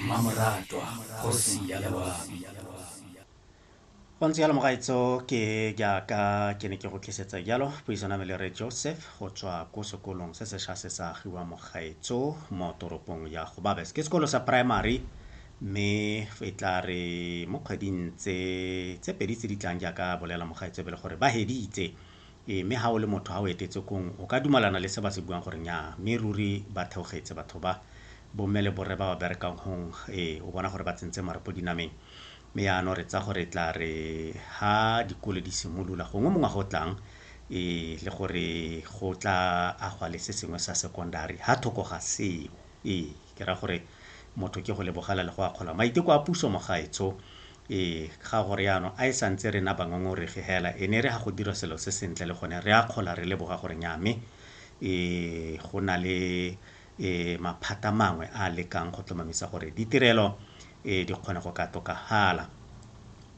mmamoratwa kgosi ya lewami wa ntse yalo mogaetso ke jaaka ke ne ke go tlisetsa jalo puisano me le re joseph go tswa ko sekolong se sesha se sa agiwa mogaetso mo toropong ya go babes ke sekolo sa primary mme e tla re mo kgweding tse tse pedi tse di tlang jaaka bolela mogaetso be le gore ba heditse Ee, mme ga o le motho, ga o etetse kong, o ka dumalana le se ba se buang gore nyaa, mme ruri ba theogetse batho ba, bomme le borre ba ba berekang gong, ee, o bona gore ba tsentse marapo dinameng. Mme yaanong re tsa gore tla re ha dikole di simolola, gongwe mo ngwaga o tlang, ee, le gore go tla agwa le se sengwe sa secondary, ha thoko ga seo. Ee, ke ra gore motho ke go lebogela le go akgola maiteko a puso, mogaetsho, Ee, ga go riano. A e sa ntse re na bangongoregi hela, e ne e re ha go dirwa selo se sentle le gone re akgola re leboga gore nnyaa mme e go na le e maphata mangwe a a lekang go tlomamisa gore ditirelo e di kgone go ka tokafala.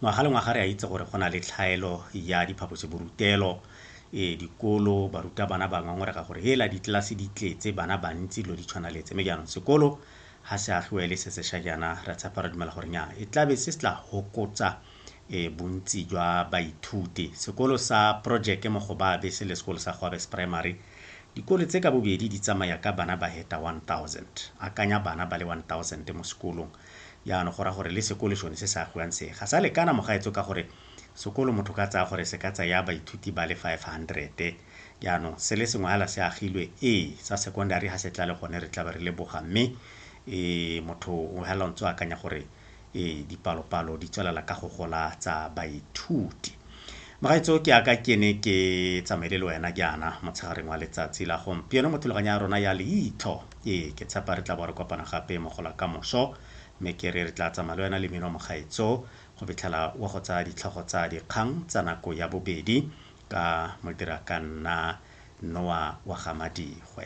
Ngwaga le ngwaga re a itse gore go na le tlhaelo ya diphaposiborutelo, e dikolo, barutabana ba ngongorega gore hela ditlelase di tletse, bana bantsi, dilo di tshwana le tse. Mme jaanong sekolo ha se a tloele se sesha jaana, re a tshepa, re dumela gore nya e tlabe se se tla hokotsa e bontsi jwa baithuti. Sekolo sa Projeke mo Gobabe se le sekolo sa Goabes Primary, dikolo tse ka bobedi di tsamaya ka bana ba heta 1000. Akanya bana ba le 1000 mo sekolong, jaano go raya gore le sekole sone se se agiwang se, ga sa lekana mogaetso ka gore sekolo motho ka tsaya gore se ka tsaya baithuti ba le 500. Jaanong, se le sengwe hala se agilwe, ee, sa secondary ha se tla le gone re tlabe re leboga. Mme, ee, motho o hala o ntse o akanya gore, ee, dipalopalo di tswelela ka go gola tsa baithuti. Mogaetso, ke aka ke ne ke tsamaile le wena jaana motshegareng wa letsatsi la gompieno mo thulaganyo ya rona ya Leitlho. Ee, ke tshepa re tla bo re kopana gape mo gola ka moso. Mme ke re re tla tsamaya le wena le mmino mogaetso go fitlhela wa go tsaya ditlhogo tsa dikgang tsa nako ya bobedi. ka mo ke re a ka nna Noa wa ga Madigwe.